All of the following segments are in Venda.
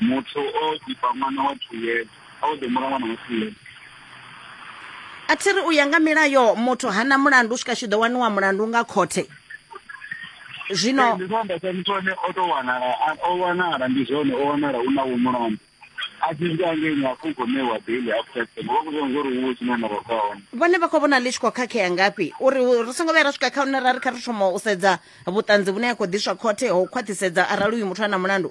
muthu o ḓifha ṅwana wa two years a o ḓomula ṅwana wa two years a thi ri u ya nga milayo muthu hana mulandu u swika tshi ḓo waniwa mulandu nga khothe zwino ndi zwa ndasa muthu ane o to wanala a- o wanala ndi zwone o wanala u na wo mulandu a tshi swika ngeni a khou gomewa daily after ten vha khou zwa uri huwe tshine na vha khou hone vhone vha khou vhona ḽi tshi khou khakhea ngafhi uri hu- ri songo vhuya ra swika kha hune ra ri kha ri thoma u sedza vhuṱanzi vhune ha khou ḓiswa khothe ho khwaṱhisedza arali uyu muthu a na mulandu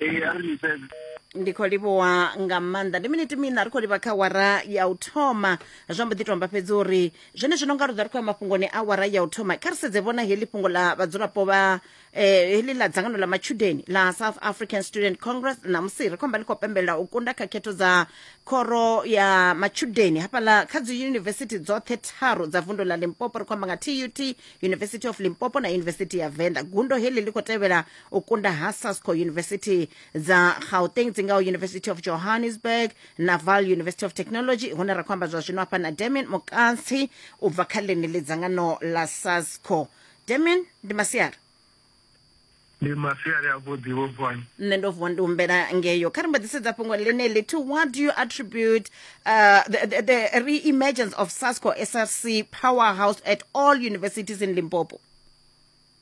ee a ri liseze ndi khou livhuwa nga maanḓa ndi miniti mina ri khou livha kha wara ya u thoma zwa mbo ḓi tomba fhedzi uri zwene zwino nga ruḓa ri khou ya mafhungoni a wara ya u thoma kha ri sedze vhona heḽi fhungo ḽa vhadzulapo vha eh, heḽi ḽa dzangano ḽa matshudeni ḽa south african student congress ṋamusi ri khou amba ḽi khou pembelela u kunda kha khetho dza khoro ya matshudeni hafhaḽa kha dzi yunivesithi dzoṱhe tharu dza vundu ḽa limpopo ri khou amba nga tut university of limpopo na university ya venda gundo heḽi ḽi khou tevhela u kunda ha sasco university dza gauteng dzi ngaho university of johannesburg na val university of technology hune ra khou amba zwa zwino hafha na damian mukantsi u bva kha ḽeneḽi dzangano la sasco damian ndi masiari ndi masiari avhuḓi vho vuwani nṋe ndo vuwa ndi humbela ngeyo kha ri mbo ḓisedza fhungo ḽeneḽi to what do you attribute uh, the, the, the re-emergence of sasco src powerhouse at all universities in limpopo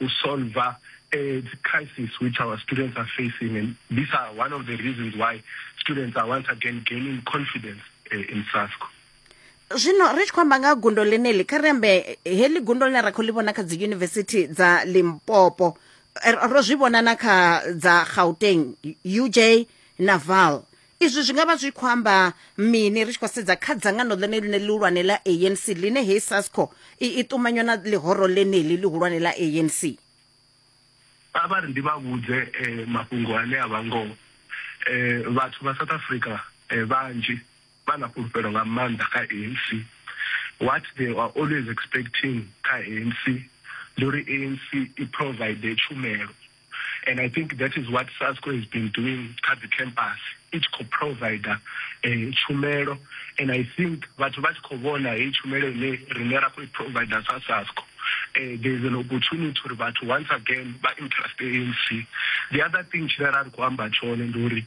u solver a crisis which our students are facing and these are one of the reasons why students are once again gaining confidence uh, in SASCO. zwino ri tshi khou amba nga gundo ḽeneḽi kha ri ambe heḽi gundo ḽine ra khou ḽi vhona kha dzi yunivesithi dza limpopo eh, ro zwi vhona na kha dza gauteng uj na val izwi zwi nga vha zwi khou amba mini ri tshi khou sedza kha dzangano ḽone ḽine ḽihulwane ḽa anc ḽine hei sasco i, i ṱumanywa na ḽihoro ḽeneḽi ḽihulwane ḽa anc vha vha ri ndi vha vhudze eh, mafhungo ane a vha ngoho eh, vhathu vha south africa eh, vhanzhi vha na fhulufhelo nga maanḓa kha anc what they are always expecting kha anc ndi uri anc i provide tshumelo and i think that is what sasco has been doing kha dzi campus i tshi khou provider um eh, tshumelo and i think vhathu vha tshi khou vhona heyi tshumelo ine rine ra khou i provider sa sasco um there is an opportunity uri vhathu once again vha interested anc the other thing tshine ra ri khou amba tshone ndi uri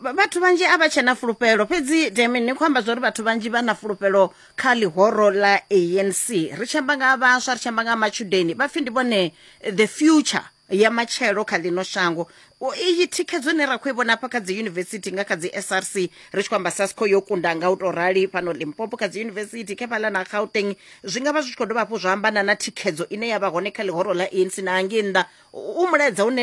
vhathu vhanzhi a vha tshena fulufhelo fhedzi demi ni khou amba zwa uri vhathu vhanzhi vha na fulufhelo kha ḽihoro ḽa anc ri tshi amba nga vhaswa ri tshi amba nga matshudeni vha pfhi ndi vhone the future ya matshelo kha ḽino shango iyi thikhedzo ne ra khou i vhona hafha kha dzi yunivesithi nga kha dzi src ri tshi khou amba sasco yo kunda nga u tou rali fhano limpopo kha dzi yunivesithi khefhaḽa na gauteng zwi nga vha zwi tshi khou dovha hafhu zwa ambana na thikhedzo ine ya vha hone kha ḽihoro ḽa anc na hangei nnḓa u mulaedza une